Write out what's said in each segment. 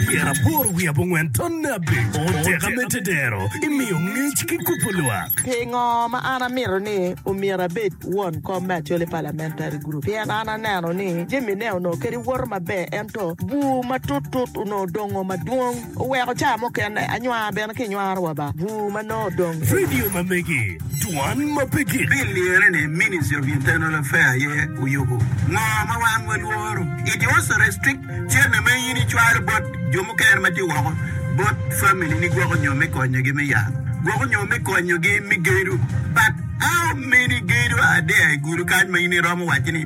Pyera aboro wiye abongwen tonne abic oteka me tedero imiyo ngec ki kubo lwak. Pingo ma an amito ni omyero abed won kom me Acholi Parliamentary Group? Pien an aneno ni jamine onongo kadi woto maber ento bur matut tut onongo dongo madwong. Oweko caa mukene anywar bene ki nywaro wa ba bur ma nongo odong. Radio ma megi, dwan ma pe gik. Bill liyere ni Ministry of Internal Affair aye oyubo ngo ma wan walworo. It also restrict cente ma in icwalo bot jo mukene ma tye woko bot family ni gwoko nyo me konyo gi me yalo gwoko nyo me konyo gi me gedo but how many gedo are there i gudo kany ma in iromo waci ni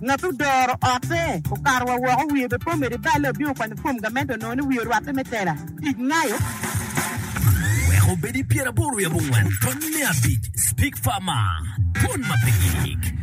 Ngat odoro otte okato wa woko wiye be pe omedo ibale obino okwanyo fom gamente onongo ni wiye orwatte me tela tic ngayo. Wek obed i pyeraboro i abongwen tony me abic Speak Farmer Dwon ma pe gik.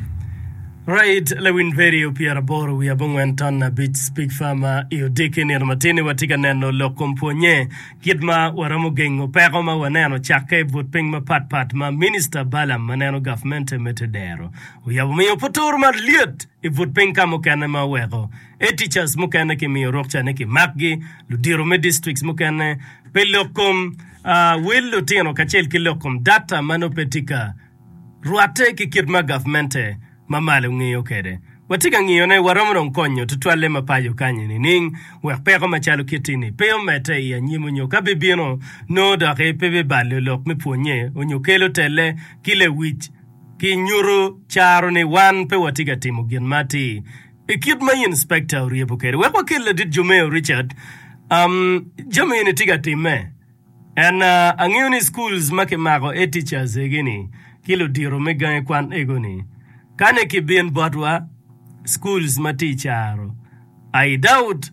Right Lewin Perry o pyeraboro wiye abongwen ton abic Speak Farmer I odiki nino matin-ni watye ka neno lok kom pwonye kit ma waromo gengo peko ma waneno cakke but piny mapat pat ma Minista Balaam ma neno gavmente me te dero Oyabo miyo puturu malyet i but piny ka mukene ma oweko Edteachers mukene ki miyo rukca ni ki makgi, ludito me districts mukene pi lok kom wil lutino kacel ki lok kom data ma nongo pe tye ka rwatte ki kit ma gavmente ma malo ngiyo kede. Watye ka ngiyo ne waromo dong konyo tutwalle ma paco kanyi nining wek peko ma calo kitti ni pe omedde i anyim onyo ka bi bino nongo doki pe bi balo lok me pwonye onyo kelo telle ki lewic Kinyuto caro ni wan pe watye ka timo gin ma atir i kit ma inspekta oryebo kwede. Wek wakel ladit Jomeo Richard jami eni tye ka timme. En angeyo ni schools ma kimako e teachers egi ni ki ludito me gangi kwan ego ni ka ne ki bin botwa schools ma tye i caro I doubt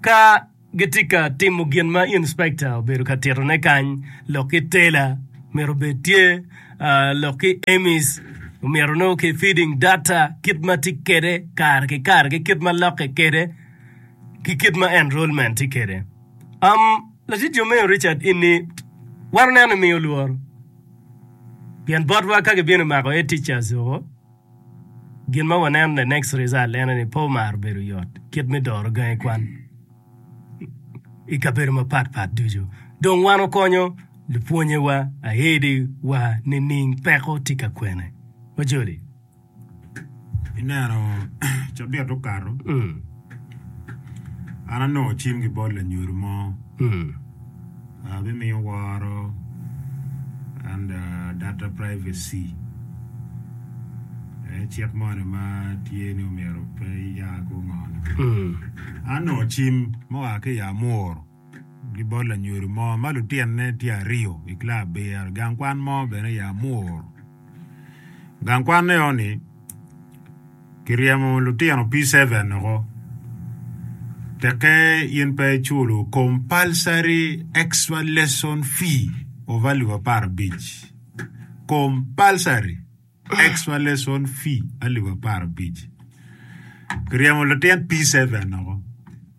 ka Gitye ka timo gin ma inspekta obedo ka titone kany lok ki tela myero obed tye lok ki Amis omyero nongo ki feeding data kit ma tye kwede kare ki kare ki kit ma lokke kwede ki kit ma enrollment tye kwede. Um, Latit Jomeo Richard Inni, wato neno ni miyo lworo pien botwa ka gibino mako Head Teachers woko, Gin ma waneno, the next result, ene ni pe omaro bedo yot kit me doro gangi kwan i kabedo mapat pat ducu. Dong wan okonyo lupwonyewa aedi wa nining peko tye ka kwene? Wajoli. Ineno cabit okato, an anongo cim ki bot lanyodo mo. bimiyo woro and data privacy aye cik moni ma tye ni omyero pe ya ki ongone an onongo cim ma oa ki i Amuru ki bot lanyodo mo ma lutinne tye aryo i club bira gang kwan mo bene i Amuru. Gang kwan eno ni kiryemo lutino P-seven woko teke in pe iculo compulsory extra lesson fee of alip apar abic compulsory extra lesson fee alip apar abic kiryemo latin P-seven woko.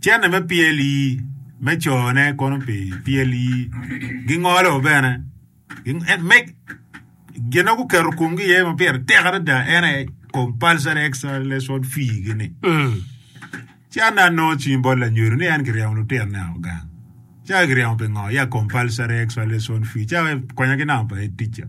Cente me PLE me cone kono pi PLE gingolo bene gin ma guketo komgi iye ma pire tek adada en aye compulsory extra lesson fee gini ci an dong anongo cwiny bot lanyodo ni en kiryemo lutino ne o gang ci ka kiryemo pingo ya compulsory extra lesson fee ci akonya ki namba pa head teacher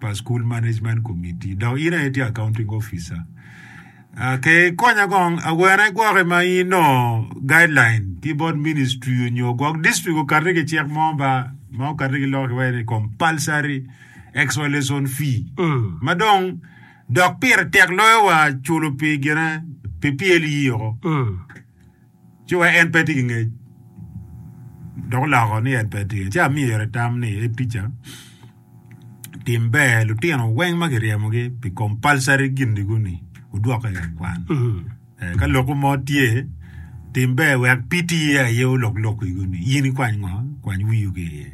pa School Management Committee dok in aye tye Accounting Officer. Uh, ke ikonya kong awene igwoke ma in onongo guideline ki bot ministry onyo gwok district okati ki cik mo ba ma okati ki loko kiwaci ni compulsory extra lesson fee ma dong dok pire tek loyo wa culo pi gine pi PLE-o. ci wek en pe ti ki ngec dok oloko ni en pe tye, ci amyero itam ni, Ee ticca, tim ber lutino weng ma kiryemogi pi compulsory gin-nigu-ni wudwokke i gang kwan. Eh, Ka lokwu mo tye, tim ber wek PT aye olok lokwigu-ni, in ikwany ngo? Kwany wiu ki iye.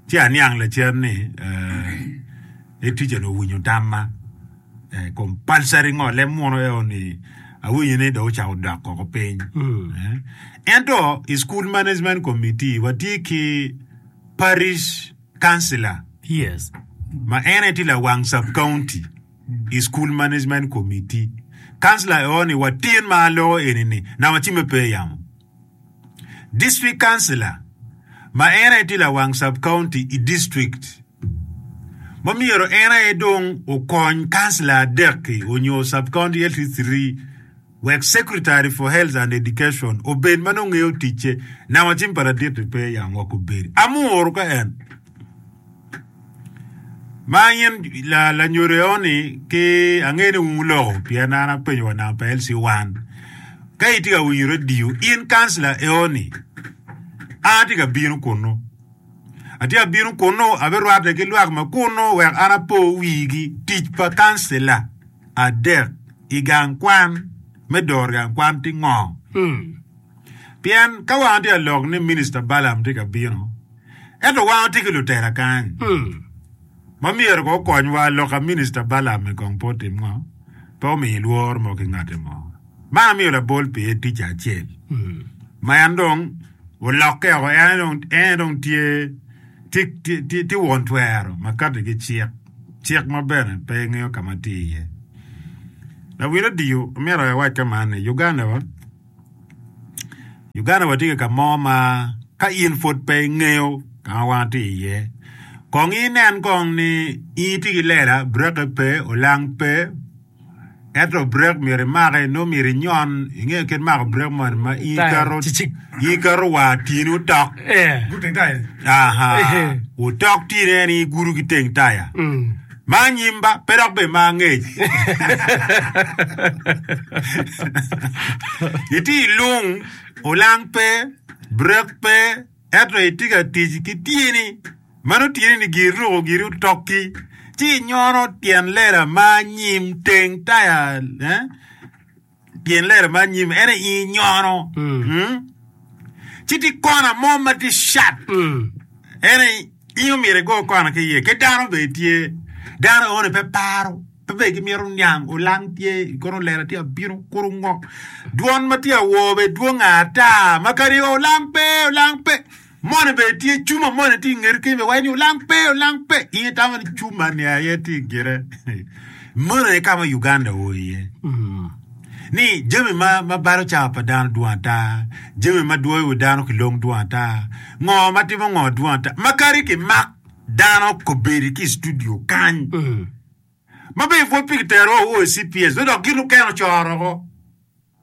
Ci aniang lacen ni, eh, Ee ticca-ni owinyo tamma. Compulsory ngole muno eo ni awinyo ni dong ocako dok koko piny. Eh. Ento i school management committee watye ki parish councilor Yes. ma en aye tye lawang sub county i school management committee. Councilor eo ni watin ma alogo eni ni na wacime pe yamo. District Councilor ma en aye tye lawang Sub County i district ma myero en aye dong okony councilor adek-ki onyo Sub County Health Three wek Secretary for Health and Education obed ma nongo ngeyo ticce nanga cim pa ladit-ti pe yam wek obedi. Amuru ka en. Ma in lanyodo eoni ki angeyo ni wun wuloko pien an apenyo wa namba pa LC wan ka itye ka winyo radio in kancila eoni an atye ka bino kunu atye ka bino kunu abirwatte ki lwak ma kunu wek an apo wigi tic pa kancila adek i gang kwan me doro gang kwan tye ngo pien ka wan atye ka lok ni minista Balam tye ka bino Ento wan watye ki lutela kany ma myero ko okonywa. Lok a Minista Balaam i kong pot tim ngo pe omiyo lworo mo ki ngati mo. Man amiyo labol pie tica acel ma en dong olokke oko, en aye dong tye won twero ma kati ki cik, cik ma bene pe ingeyo ka ma tye iye. Lawil odio, amito awac ka man ni, Uganda wa. Uganda watye ki ka mo ma ka in pud pe ingeyo ka ma wan watye iye, kong inen kong ni in itye ki lela, bureke pe, olang pe, ento burek myero imaki nongo myero inyon inge kit mako burek moni ma in iketo in iketo wa tyeni otok aa otok tyeni en igudo ki teng taya. Ma anyim ba, pe dok bene ma angec. Itye i lung, olang pe, brek pe, ento itye ka tic ki tyeni ma nongo tyeni ni giri ruko giri otokki, ci inyono tyen lela ma anyim teng taya. Pien lere ma anyim en aye inyono, ci tye kona mo ma tye cat. En aye in omyero igo kona ki iye. Ki dano bene tye, dano aone pe paro, pe bene gimito niang, olang tye, kono lela tye abino, kuro ngok. Dwon ma tye awor bene dwong ata, ma kadi olang pe, olang pe. Moni bene tye cuma moni tye ingeti kenyo me waci ni olang pe olang pe in itamo ni cuma ni aye tye ingete moni aye ka ma Uganda oo iye ni jami ma ma balo cawa pa dano dwong ata jami ma dwoyo wi dano ki long dwong ata ngo ma timo ngo dwong ata ma kadi ki mak dano kobedi ki studio kany ma be ipwod pi kitero o CPS dok gin okeno coro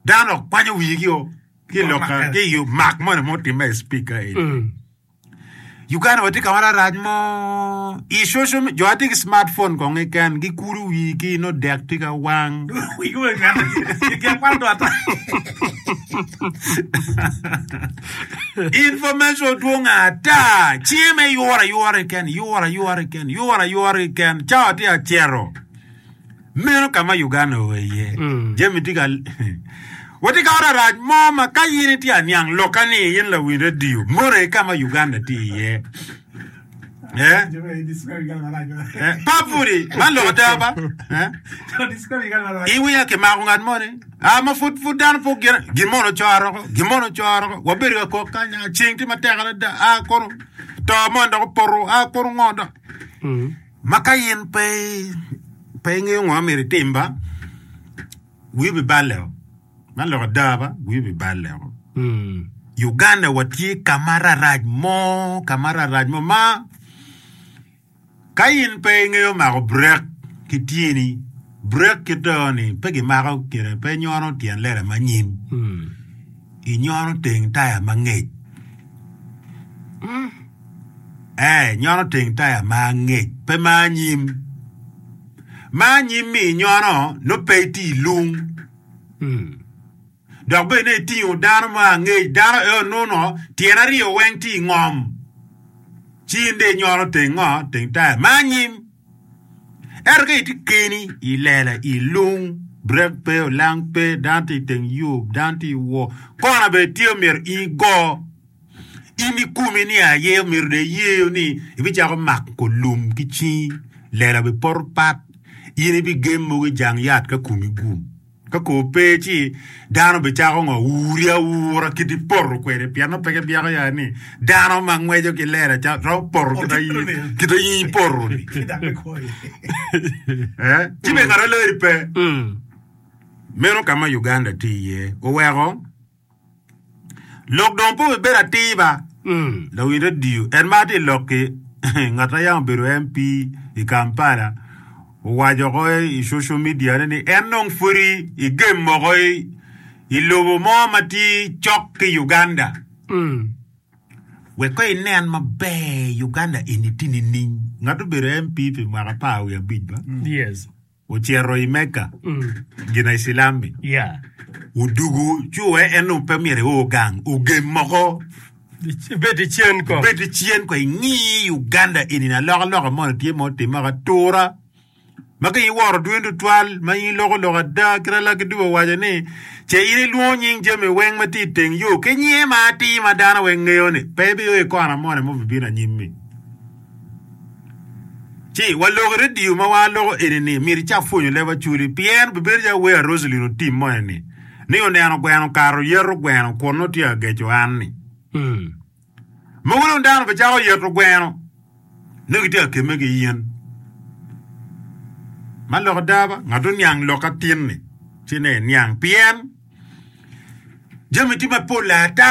Dano kwanyo wigi o ki loka ki i mak moni mo timme i speaker eni. Mm. Uganda watye ka wara rac mo i social media. Jo atye ki smartphone kong keken gikulu wigi no dek tye ka wang. Wigi weng ngata gigya kwano dwata. Information dwong ata. Cinge me yura yura keken, yura yura keken, yura yura keken. Cawa tye acero. Meno ka ma Uganda oa iye, jami tye ka. Watye ka oto arac mo ma ka in itye aniang lokka ni in lawiny radio, mono aye ka ma Uganda tye iye. Eh? Pa pudi, man lok ada ba? Eh? Iwiya kimako ngat mo ni, ah, ma pud pud dano pok gin, gin mono coro ko, gin mono coro ko. Wabedo ka kok kanya, ah, ceng tye matek adada, ah, kono to mono dok opoto, ah, kono ngo dok. Ma ka in pe pe ingeyo ngo ma myero itim ba, wii obiballe o. Man lok ada ba, wii obiballe o. Uganda watye ka ma rarac mo, ka ma rarac mo ma ka in pe ingeyo mako brek ki tyeni, brek kit o ni pe gimako gire, pe inyono tyen lela ma anyim, inyono teng taya ma ngec. Ee, nyono teng taya ma angec, pe ma anyim. Ma anyim-mi inyono nongo pe itye i lung. Hmm. Dok bene itingo dano ma angec, dano eo nuno tyene aryo weng tye i ngom. Ci in de inyono teng ngo? Teng taya ma anyim. Ento ka itye keni i lela i lung, brek pe, olang pe, dano tye i teng yo, dano tye i wor, kona bene tye omyero in igo. In i komi ni aye omyero dong iyeyo ni ibicako mako lum ki cingi, lela bene poto pat, in ibigem mogo i jang yat ka komi gum. Ka kor pe ci dano bicako ngo uri aura kit ipoto kwede pien nongo pe kibyeko ya ni dano ma ngweco ki lela ca romo poto kit ayi kit ayi ipoto ni. Eh, ci bene ngat alari pe. Meno ka ma Uganda tye iye oweko Lok dong pe wubed atir ba. Lawiny radio en ma tye i lok-ki ngat ma yam obedo MP i Kampala owaco ko i social media ne ni en dong pwodi i game moko i lobo mo ma tye cok ki Uganda. Wek ko inen maber Uganda eni tye nining? Ngat obedo MP pi mwaka apar wiye abic ba? Yes. Ocito i Mecca, gina i Cilam-mi. Odugo ci wee en dong pe myero eor gang, ogem moko. Ibed icen ko. Ibed icen ko ingi Uganda eni na loka loka moni tye ma otimme ka tura ma ka iworo dwoni tutwal ma in iloko lok ada kite laki dubo owaco ni ce in ilwongo nying jami weng ma tye iteng yo ki nyinge ma atir ma dano weng ngeyo ni pe ibiyo i kona moni ma obibino anyim-mi. Ci waloko redio ma waa loko eni ni miti ca pwonyo leb Acholi pien bibedo ca Wer Roselyn otim mo eni ni oneno gweno okato yeto gweno kun nongo tye ageco an ni mogo dong dano be cako yeto gweno nongo gitye ka kemme ki yen ma lok ada ba ngat oniang lok atin ni ci ne iniang pien jami tye mapol ata